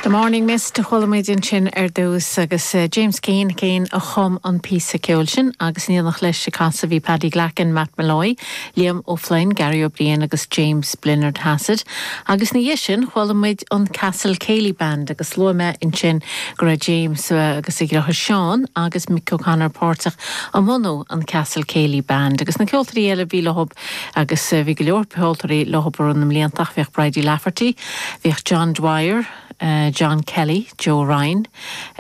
The Morning Mist a chuala muid ansin ar dtús agus James Keane, Keane a chum an píosa ceoil sin agus in éineacht leis ag casadh bhí Paddy Glackin, Matt Molloy, Liam O'Flynn, Garry Ó Briain agus James Blennerhassett agus ina dhiaidh sin chuala muid an Castle Céilí Band agus luaigh mé ansin go raibh James agus a dheartháir Seán agus Mick O'Connor páirteach i mbunú an Castle Céilí Band agus na ceoltóirí eile a bhí leo Agus bhí go leor ceoltóirí leo i rith na mblianta ach bhíodh Bridie Lafferty, bhíodh John Dwyer, John Kelly, Joe Ryan,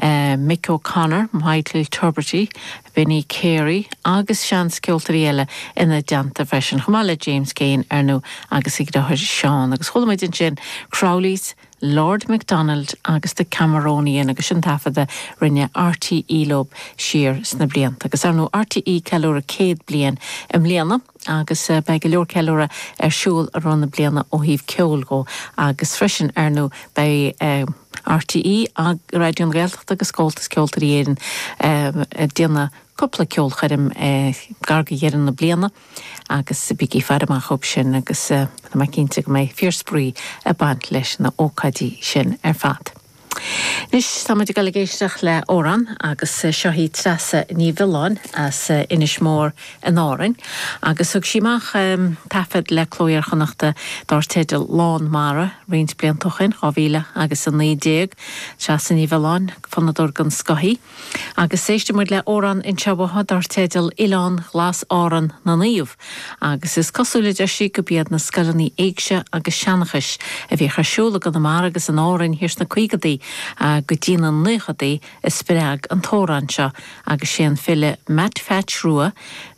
Mick O'Connor, Michael Tubridy, Benny Carey agus seans ceoltóirí eile ina dteannta freisin, chomh maith le James Keane, ar ndú, agus a dhriotháir Seán. Agus chuala muid ansin Crowley's, Lord MacDonald agus The Cameronian agus sin taifead a rinne RTÉ leo siar sna blianta. Agus ar ndóigh RTÉ ag ceiliúradh céad bliain i mbliana agus beidh go leor ceiliúradh ar siúl i rith na bliana ó thaobh ceoil dhó agus freisin ar ndóigh beidh RTÉ, Raidió na Gaeltachta agus Comhaltas Ceoltóirí Éireann ag déanamh cúpla ceolchoirm gar do dheireadh na bliana. Agus bígí ag faire amach dóibh sin agus tá mé cinnte go mbeidh fíorspraoi ag baint leis na hócáidí sin ar fad. Anois tá muid ag dul ag éisteacht le amhrán agus seo hí Treasa Ní Mhiolláin as Inis Mór in Árainn agus thug sí amach taifead le Cló Iar-Chonnachta dár teideal Lán Mara roinnt blianta ó shin, 2000 agus 19. Treasa Ní Mhiolláin, fonnadóir den scoth í. Agus éistfidh muid le amhrán anseo uaithi dar teideal 'Oileán Glas Árann na Naomh', agus is cosúil, a deir sí, go b'iad na scoileanna éigse agus seanchais a bhíodh ar siúl i gConamara agus in Árainn thiar sna caogadaí go dtí na naochadaí a spreag an t-amhrán seo agus sé an file Meait Pheaits Rua,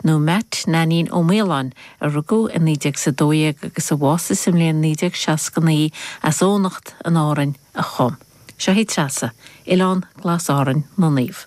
nó Meait Neainín Ó Maoláin, a rugadh i 1912 agus a bhásaigh sa mbliain 1969, as Eoghanacht in Árainn, a chum. Seo hí Treasa, Oileán Glas Árainn na Naomh.